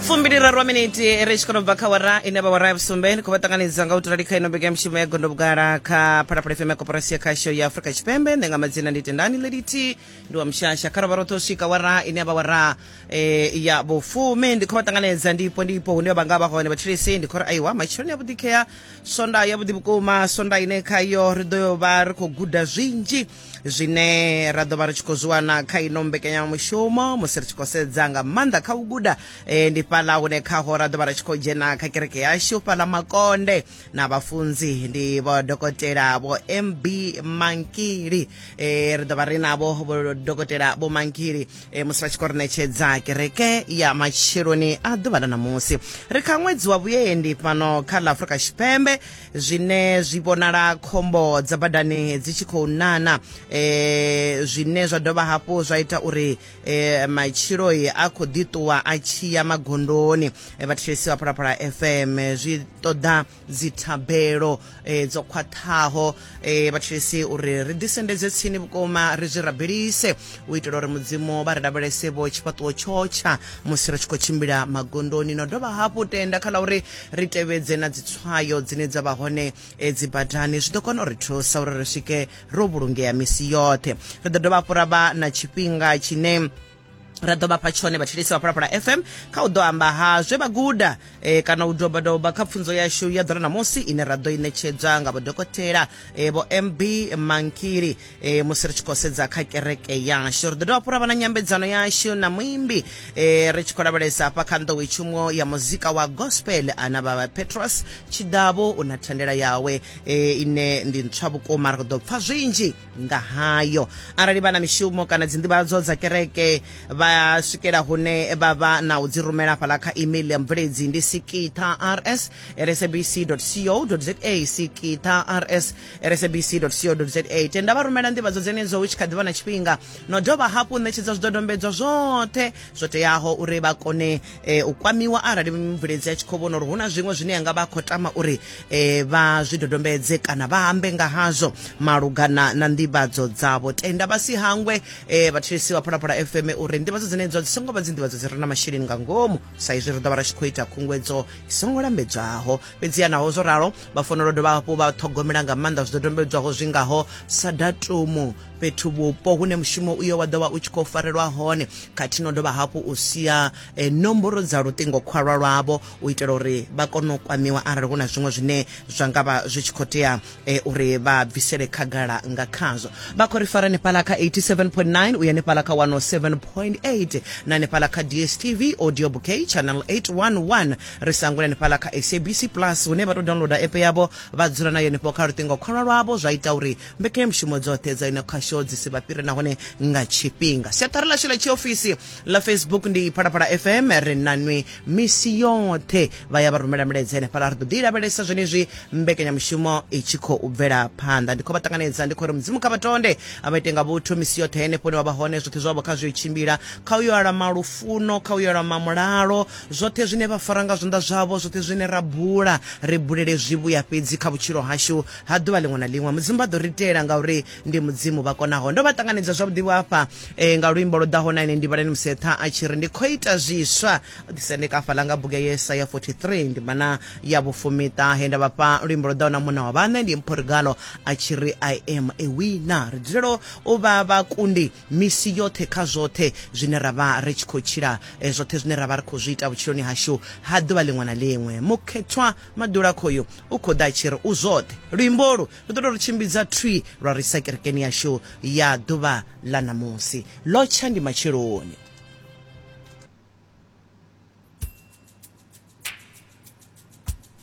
fumbiliraru wa miniti ri tshi kono bva kha wara ine vha wara ya vhusumbe ni khou vha ṱanganedza nga u tulali kha ino bege ya mushumo ya gondo vhugala kha phalaphala fm ya koporasi ya khasho ya afurika tshipembe nṋe nga madzina ndi tendani leliti ndi wa mushasha kha rovha roṱhe u swika wara ine ya vha wara eh, ya vhufumi ndi khou vha ṱanganedza ndipo ndipo hune vha nga vha hone vhathulisi ndi khou ri aiwa matshiloni ya vhuḓikhea sonda ya vhuḓi vhukuma sonda ine khayo ri ḓo yo vha ri khou guda zwinzhi zwine ra ḓo vha ri tshi khou zwi wana kha ino mbekanyamushumo musi ri tshi khou sedza nga maanḓa kha u guda e, ndi fhaḽa hune khaho ra ḓo vha ri tshi khou dzhena kha kereke yashu fhaḽa makonde na vhafunzi ndi vho dokotela vho mb mankili e, ri ḓo vha ri navho vho dokotela vho mankili e, musi vha tshi khou ri ṋetshedza kereke ya matsheloni a ḓuvha ḽa ṋamusi ri kha ṅwedzi wa vhuendi fhano kha ḽa afurika tshipembe zwine zwi vhonala khombo dza badani dzi tshi khou nana e, zwine zwa dovha hafhu zwa ita uri e, matshilo a khou ḓiṱuwa a tshiya magondoni e, vhathetshelesi vha phalaphala fm zwi ṱoḓa dzithabelo e, dzo khwaṱhaho e, vhathetshelesi uri ri ḓisendedze tsini vhukuma ri zwi rabelise u itela uri mudzimu vha ri lavhelese vho tshifhaṱuwo tshotsha musi ri tshi khou tshimbila magondoni no dovha hafhu tenda kha ḽa uri ri tevhedze na dzitswayo dzine dza vha hone eh, dzi badani zwi ḓo kona u ri thusa uri ri swike ro vhulungea misi yoṱhe ri ḓo dovha hafhu ra vha na tshifhinga tshine ra ḓo vhafha tshone vhathetshelesi vha phalaphala fm kha u ḓo amba ha zwe vha guda e, kana u dobadoba kha pfunzo yashu ya ḓora ṋamusi ine ra ḓo i ṋetshedzwa nga vhodokotela e, vho mb mankili e, musi ri tshi khou sedza kha kereke yashu ri ḓo dovha fhura vha na nyambedzano yashu na muimbi e, ri tshi khou lavhelesa hafha kha nḓowetshumo ya muzika wa gospel ana vha petros tshidavhu u na thandela yawe e, ine ndi ntswa vhukuma ri ḓo pfa zwinzhi nga hayo arali vha na mishumo kana dzinḓivhadzo dza kereke vha swikela hune vha vha na u dzi rumela fhala kha email ya mubveledzi ndi sikitha rs rsabc co za sikitha rs sabc co za tenda vha rumela nḓivhadzo dzenedzo hu tshi kha ḓivha na tshifhinga no dovha hafhu ṋetshedza zwidodombedzwa zwoṱhe zwo teaho uri vha kone e, u kwamiwa arali mubveledzi a tshi khou vhona uri hu na zwiṅwe zwine yanga vha khou tama uri e, vha zwidodombedze kana vha ambe nga hazwo malugana na nḓivhadzo dzavho tenda vha si hangwe e, vhathetshelesi vha phalaphala fm uri nḓivhadzo dzenedzo dzi songo vha dzi nḓivhadzo dzi re na masheleni nga ngomu sa izwi ri ḓo vha ri tshi khou ita khunguwedzo i songo lambedzwaho fhedziha naho zwo ralo vha fanela dovha hafhu vha ṱhogomela nga maanḓa zwidodombedzwaho zwi ngaho sa datumu fhethu vhupo hune mushumo uyo wa ḓovha u tshi khou farelwa hone khathihi no dovha hafhu u sia e, nomboro dza luṱingo khwalwa lwavho u itela uri vha kone u kwamiwa arali hu na zwiṅwe zwine zwa nga vha zwi tshi khou tea e, uri vha bvisele khagala nga khazwo vha khou ri fara nefhala kha 87.9 uya nefhala kha 107.8 na nefhala kha dstv audio bouquet channel 811 ri sangule hanefhaḽa kha sabc plus hune vha tou downloader app yavho vha dzula nayo henefho kha luṱingo khwalwa lwavho zwa ita uri mbekanyamushumo dzoṱhe dza ino khasho dzi si vha fhire nahone nga tshifhinga siaṱari ḽashu ḽa tshiofisi ḽa facebook ndi phalaphala fm ri nanwi misi yoṱhe vha ya vha rumela milaedza henefhaḽa ri ḓo ḓi lavhelesa zwenezwi mbekanyamushumo i tshi khou bvela phanḓa ndi khou vha ṱanganedza ndi khou ri mudzimu kha vha tonde a vha ite nga vhuthu misi yoṱhe henefho ni wa vha hone zwoṱhe zwavho kha zwi tshimbila kha u yo alama lufuno kha u yo alama mulalo Zwoṱhe zwine vha fara nga zwanḓa zwavho, zwoṱhe zwine ra bula, ri bulele zwivhuya fhedzi kha vhutshilo hashu ha ḓuvha ḽiṅwe na ḽiṅwe. Mudzimu vha ḓo ri itela, ngauri ndi Mudzimu vha konaho. Ndo vha ṱanganedza zwavhuḓi-vho afha e, nga luimbo lwo ḓaho na ene ndivhalani musi eṱha a tshi ri, Ndi khou ita zwiswa. O ḓisendeka hafhaḽa nga bugu ya Yesaya 43, ndimana ya vhufumi-ṱahe, he nda vha fha luimbo lwo ḓaho na munna wa vhaṋe, ndi Mpho Regalo a tshi ri, I am a winner. Ri dzulela u vha vhakundi. misi yoṱhe kha zwoṱhe zwine ra vha ri tshi khou tshila, zwoṱhe zwine ra vha ri khou zwi ita vhutshiloni hashu ha ḓuvha ḽiṅwe na ḽiṅwe. Mukhethwa Maḓulakhoyu u khou ḓa a tshi ri, U zwoṱhe. Luimbo holu lu ḓo tou ri tshimbidza thwii lwa ri isa kerekeni yashu ya ḓuvha ḽa ṋamusi. Ḽo tsha ndi matsheloni.